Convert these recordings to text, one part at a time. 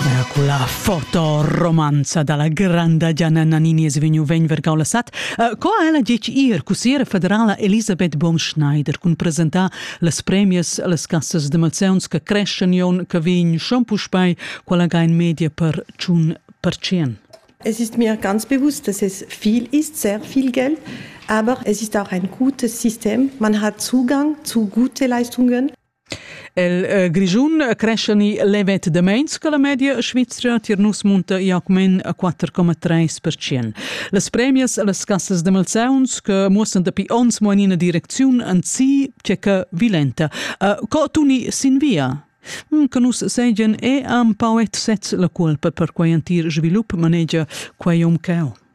Ja, quella fotoromanza dalla granda Gianna Nannini es vegniu vegn vergau la sat. Uh, co ha ella ditg ir cussiera federala Elisabeth Bonschneider cun presentar las premias las cassas de malzeunts che creschen jon che vegn schon puspei quella ga in media per tschun per cien? Es ist mir ganz bewusst, dass es viel ist, sehr viel Geld, aber es ist auch ein gutes System. Man hat Zugang zu gute Leistungen. El eh, Grischun crescia ni levet da meins che la media svizra tier nus munta Jacquemin a 4,3%. Las premias las cassas de malzauns che muossan dapi ons mo in ina direcziun an si tschecca vilenta. Uh, co tuni sin via? Mm, che nus seigien e am pauet sez la culpa per quei antir svilup manegia quei um ceu.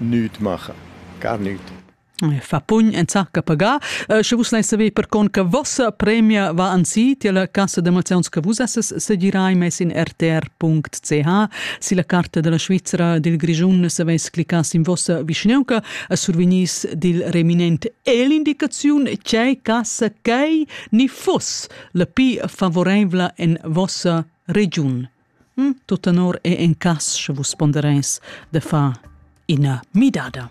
nüt macha. Gar nüt. fa pugn enzarca pagar. Uh, sche vus lai saver per con che vossa premia va ansi, tia la cassa d'emozions che vus esses segirai mes in rtr.ch. Si la carta della Svizzera dil Grischun se veis clicas in vossa vischneuca, a survenis dil reminent e l'indicaziun c'è cassa cai ni fuss la pi favoreivla en vossa region. Tut tenor è en cass, sche vus ponderais da far ina midada.